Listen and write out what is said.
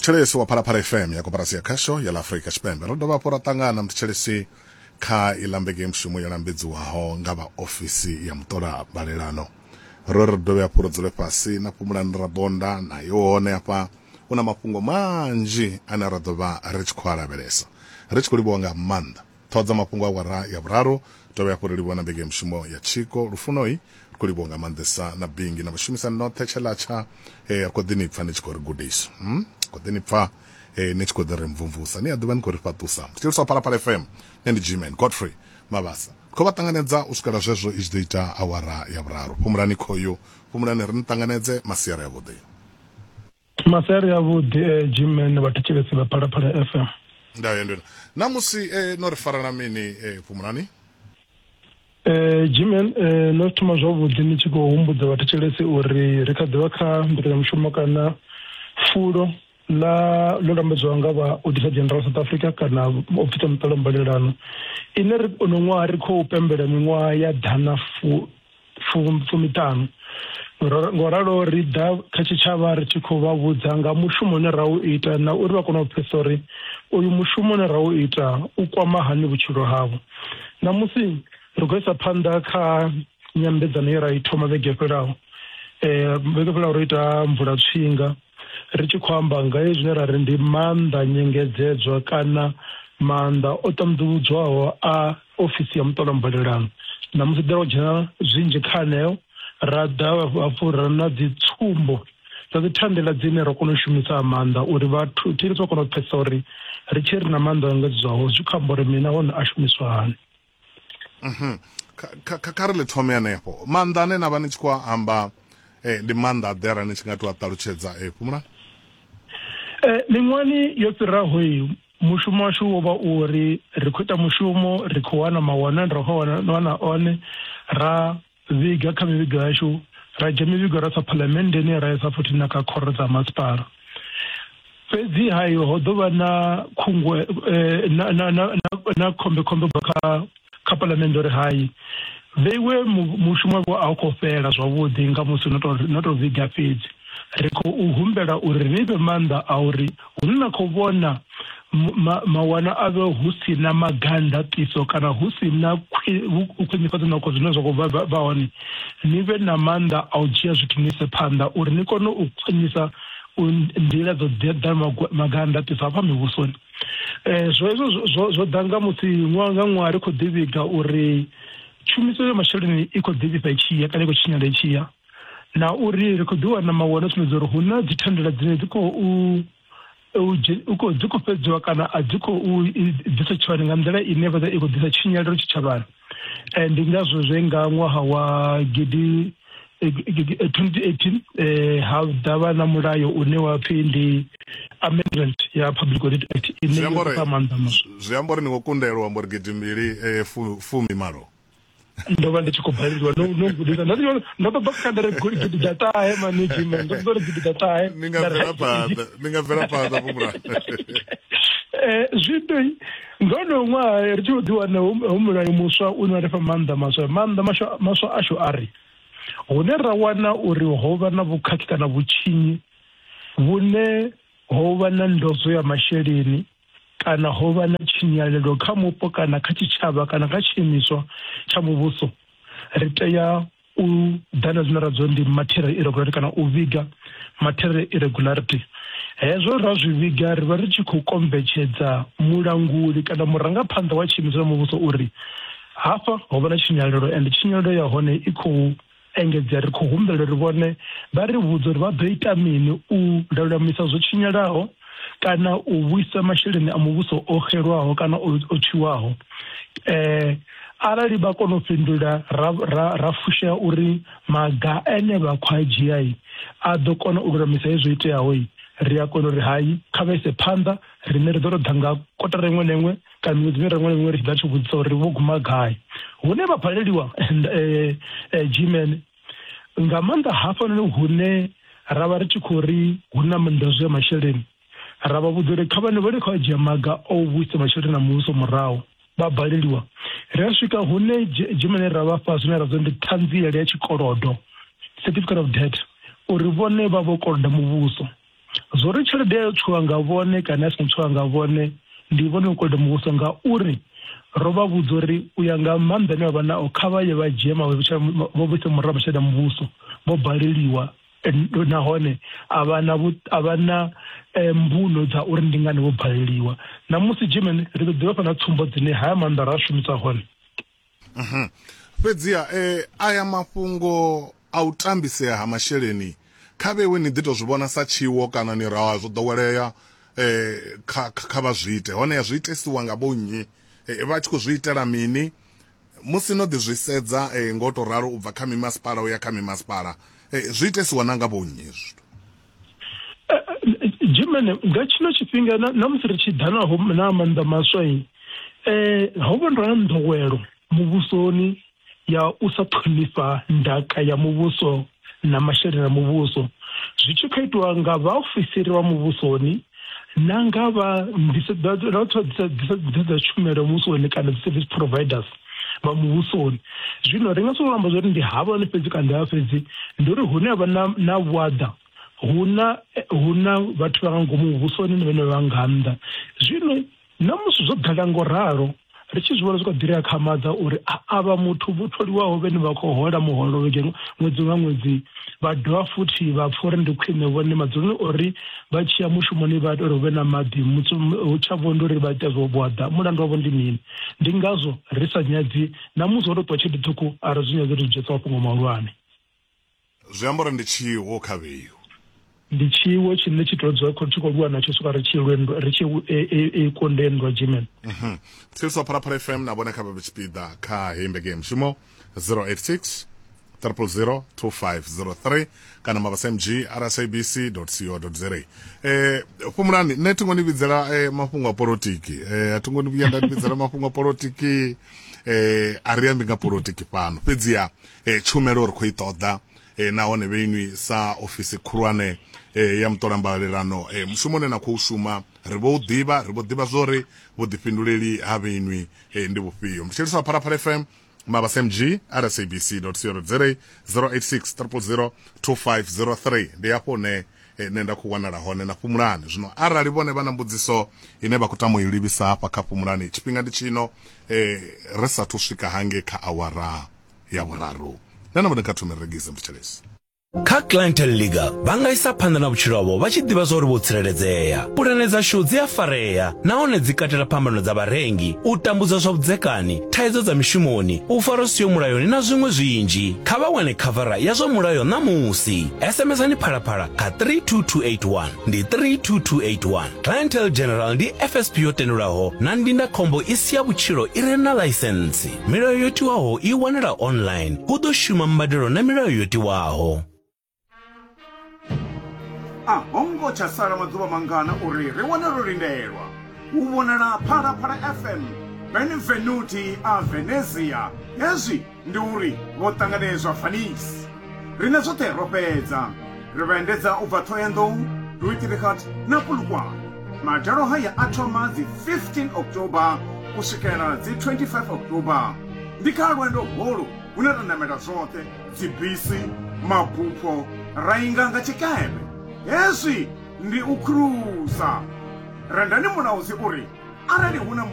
muthetshelesi wa phalaphala fm ya koporasi ya khasho ya ḽa afurika tshipembe ro dovha hafhu ra ṱangana muthetshelesi kha iḽa mbege mushumo yo lambedziwaho nga vha ofisi ya muṱola balelano ro ri dovhe hafhu ro dzule fhasi na fhumulani ra bonda nayo hone hafha hu na mafhungo manzhi ane ra ḓo vha ri tshi khou a lavhelesa ri tshi khou livhuwa nga maanḓa Ṱhoho dza mafhungo awara ya vhuraru. Dovhe hafhu ri livhuwe na Mbenge ya Mishumo ya Tshiko Lufunoi. Ri khou livhuwa nga maanḓesa na Bingi na vhashumisani noṱhe Tsheḽatsha. Ee, ri khou ḓi ni pfa ni tshi khou ri gudisa. Umm, ri khou ḓi ni pfa ee, ni tshi khou ḓi ri mvumvusa. Ni a ḓivha ni khou ri fhaṱusa. Ndi Tshiliswa Phalaphala FM. Nṋe ndi G-Man Godfrey Mabasa. Ri khou vha ṱanganedza u swikela zwezwo i tshi ḓo ita awara ya vhuraru. Fhumulani khoyu, fhumulani ri ni ṱanganedze. Masiari avhuḓi. maseri avhuḓi e eh, gmen vha thetshelesi vha phalaphala fm ndayo ndona namusi e eh, no ri farana mini e eh, phumulani Eh Jimen eh no thoma zwavhuḓi ni tshi khou humbudza vhathetshelesi uri ri kha ḓivha kha mbekanyamushumo kana fulo ḽa ḽo lambedzwa nga vha auditor general south africa kana ofisi ya muṱolo mbalelano ine ri ono ṅwaha ri khou pembela miṅwaha ya ḓana fu fumiṱhanu. Ngoralo ri ḓa kha tshitshavha ri tshi khou vha vhudza nga mushumo une ra u ita na uri vha kone u pfesa uri uyu mushumo une ra u ita u kwama hani vhutshilo havho. Ṋamusi ri khou isa phanḓa kha nyambedzano ye ra i thoma vhege fhelaho. Vhege fhelaho ro ita mvula tswinga. ri tshi khou amba nga he zwine ra ri ndi maanḓa nyengedzedzwa kana maanḓa o ṱanḓuludzwaho a ofisi ya muṱola mbalelano na musi ḓela u dzhena zwinzhi kha aneo ra ḓa hafhu ra na dzi tsumbo dza dzi thandela dzine ra kona u shumisa maanḓa uri vhathu thiri vha kona u pfesesa uri ri tshi ri na maanḓa engedzedzwaho zwi khou amba uri mini nahone a shumiswa hani mhm. kha kha ri ḽi thome hanefho maanḓa ane na vha ni tshi khou amba eh, ndi maanḓa a ḓera ni tshi nga tou a ṱalutshedza e eh, fhumula eh, miṅwani yo fhiraho i mushumo washu wo vha u ri ri khou ita mushumo ri khou wana mawana ri khou wana one ra vhiga kha mivhigo yashu ra dzhia mivhigo ra sa phalamennde ine ra isa futhi na kha khoro dza masipala fhedzi hayo ho ḓo vha na khungwe eh, na, na, na, na, na khombe khombe ubva kha kha palamennde uri hayi vheiwe mushumo wavho a u khou fhela zwavhuḓi nga musi no to vhiga fhedzi ri khou humbela uri ni fhe maanḓa a uri Hune na khou vhona ma, mawana a vhe hu si na maganḓaṱiso kana hu si na khwinifhadzo noko zwine zwa khou vha hone ni vhe na maanḓa a u dzhia zwithu ni ise phanḓa uri ni kone u khwinisa nḓila dzo ḓeḓa maganḓaṱiso hafha mivhusoni um zwo hezwo zwo ḓa nga musi ṅwaha nga ṅwaha ri khou ḓivhiga uri tshumiso ya masheleni i khou ḓivhisa i tshiya kana i khou tshinyala i tshiya na uri ri khou ḓi wana mawana sumbedza uri hu na dzi thandela dzine dzi khou khou dzi khou fhedziwa kana a dzi khou ḓisa tshitshavhani nga nḓila ine vha i khou ḓisa tshinyalelo tshitshavhani eh, ndi ngazwo zwe nga ṅwaha wa gidi 2018 eh ha dava na mulayo une wa pfi ndi amendment ya public audit act ine ya fha maanḓa maswa zwi amba uri ni khou kundelwa amba uri gidi mbili eh, fumi malo ndo vha ndi tshi khou baleliwa no no gudisa ndo ndo ndo ṱoḓa kha ndere gidi dza ṱahe mani jime ndo ṱoḓa uri gidi dza ṱahe ni nga bvela phanḓa ni nga bvela phanḓa vho mulayo eh zwithu ndo no ṅwaha ri tshi ḓi wana hu mulayo muswa u ne wa ri fha maanḓa maswa maanḓa maswa maswa ashu a ri hune ra wana uri ho vha na vhukhakhi kana vhutshinyi vhune ho vha na ndodzo ya masheleni kana ho vha na tshinyalelo kha mupo kana kha tshitshavha kana kha tshiimiswa tsha muvhuso, ri tea u ḓa na zwine ra zwi ndi material irregularity kana u vhiga material irregularity. Hezwo ra zwi vhiga ri vha ri tshi khou kombetshedza mulanguli kana murangaphanḓa wa tshiimiswa tsha muvhuso uri hafha ho vha na tshinyalelo ende tshinyalelo ya hone i khou engedza ri khou humbela uri vhone vha ri vhudze uri vha ḓo ita mini u lulamisa zwo tshinyalaho kana u vhuisa masheleni a muvhuso o xelwaho kana o tshiwaho eh arali vha kona u fhindula ra ra ra fushea uri maga ene vha khou a dzhia a ḓo kona u lulamisa hezwo iteaho ri a kona uri hai kha vha ise phanḓa rine ri ḓo to ḓa nga kotara iṅwe na iṅwe kana miṅwedzi mirengo na miṅwe ri tshi ḓa tshi vhudzisa uri vho guma gai hune vha paleliwa eh, eh, gmen nga maanḓa hafhanoni hune ra vha ri tshi khou ri hu na manḓazwi ya masheleni ra vha vhudza uri kha vhane vha li khou a dzhia maga a u vhuisa masheleni a muvhuso murahu vha baleliwa ri a swika hune dzimene ra vha fha zwine ra zwa ndi ṱhanziele ya tshikolodo certificate of debt uri vhone vha vho koloda muvhuso zwo ri tshelede ya yo tswiwa nga vhone kana ya songo tswiwa nga vhone ndi vhone u koloda muvhuso nga uri ro vha vhudza uri u ya nga maanḓa ane vha vha nao kha vha ye vha dzhie vho vhise murahu masheleni a muvhuso vho baleliwa nahone a vha na a vha na eh, mbuno dza uri ndi ngani vho baleliwa na musi german ri ḓo ḓivha fha na tsumbo dzine haya maanḓa ra a shumisa hone Mhm. fhedziha e, aya mafhungo a u tambisea ha masheleni kha vhewe ni ḓi tou zwi vhona sa tshiwo kana ni ra zwo ḓowelea eh, kha, kha, kha vha zwi ite honeha zwi itesiwa nga vho nnyi eh, vha tshi khou zwi itela mini musi no ḓi zwi sedza eh, ngo tou ralo u bva kha mimasipala u ya kha mimasipala eh, zwi itesiwa na nga vho nnyi hezwi zwithu jimene nga tshino tshifhinga na- na musi ri tshi ḓa naho na maanḓa maswa i um ho vha ndo ya nḓowelo muvhusoni ya u sa ṱhonifha ndaka ya muvhuso na masheleni a muvhuso zwi tshi khou itiwa nga vhaofisiri vha muvhusoni na nga vha nḓisedzo na vhathu vha ḓisa- ḓisa- ḓisedzo dza tshumelo muvhusoni kana dzi service providers vha muvhusoni zwino ri nga sokou amba zwori ndi havhani fhedzi kana ndi havha fhedzi ndi uri hune havha na na vhuaḓa huna huna vhathu vha nga ngomu muvhusoni ni vhene vha nga nnḓa zwino na musi zwo ḓala ngo ralo ri tshi zwi vhona zwi kha ḓiri akhamadza uri avha muthu vho tholiwaho vhene vha khou hola muholo vhege ṅwedzi nga ṅwedzi vha dovha futhi vha pfha uri ndi khwine vhone madzuloni uri vha tshiya mushumoni vha tori hu vhe na maḓi hu tsha vho ndi uri vha ita zwo vhuaḓa mulandu wavho ndi mini ndi ngazwo ri sa nyadzi na musi ho tou ṱwa tshelede ṱhukhu a ri zwi nyadzi ri zwi dzhiesa mafhungo mahulwane zwi amba uri ndi tshiwo kha vheyu ndi tshiwo tshine tshi tou dzula tshi khou lwa natsho swika ri tshi lwendwa ri tshi e, e, e kondendwa jimen mhm. tsiriso pharaphala fm na vhone kha vha tshipiḓa kha heyi mbeke ya mushumo 086 000 2503 kana mabasa mg rsabc co za eh fhumulani nṋe thi ngo ni vhidzela eh, mafhungo a politiki eh a thi ngo ni vhuya nda ni vhidzela mafhungo a politiki eh a ri ambi nga politiki fhano fhedziha eh, tshumelo ri khou i ṱoḓa eh, nahone vheinwi sa ofisi khulwane eh, ya muṱolambalalelano eh, mushumo une na khou shuma ri vho u ḓivha ri vho ḓivha zwori vhuḓifhinduleli ha vheinwi eh, ndi vhufhio ndi tsheliswa pharaphala fm mabasmg at sabc co za 086 000 2503 ndi hafho hune eh, nṋe nda khou wanala hone na fhumulani zwino arali vhone vha na mbudziso ine vha khou tama u i livhisa hafha kha fhumulani tshifhinga ndi tshino eh, ri sathu swika hange kha awara ya vhuraru nṋe na vhone kha thome regise mthetshelesi Kha Clientele League, vha nga isa phanḓa na vhutshilo havho vha tshi ḓivha zwauri vho tsireledzea. Pulane dzashu dzi a farea nahone dzi katela phambano dza vharengi, u tambudzwa zwa vhudzekani, thaidzo dza mishumoni, u farwa zwi siho mulayoni na zwiṅwe zwinzhi. Kha vha wane khavara ya zwa mulayo ṋamusi. SMS-ani Phalaphala kha 32281. Ndi 32281. Clientele General ndi FSP yo tendelwaho na ndindakhombo i si ya vhutshilo i re na ḽaisentsi. milayo yo tiwaho i wanala online hu ḓo shuma mbadelo na milayo yo tiwaho a ho ngo tsha sala maḓuvha mangana uri ri wane ro lindelwa u vhonala phalaphala fm benvenuti a venezia hezwi ndi uri vho ṱanganedzwa fanisi Riṋe zwoṱhe ro fhedza ri vha endedza u bva Thohoyandou, Duitrigat na Polokwane. Madalo haya a thoma dzi 15 October u swikela dzi 25 October. Ndi kha lwendo holu hune ra namela zwoṱhe dzibisi, mabupho ra inga nga tshikepe. Hezwi ndi u khruza. Rendani mulaudzi uri arali hu na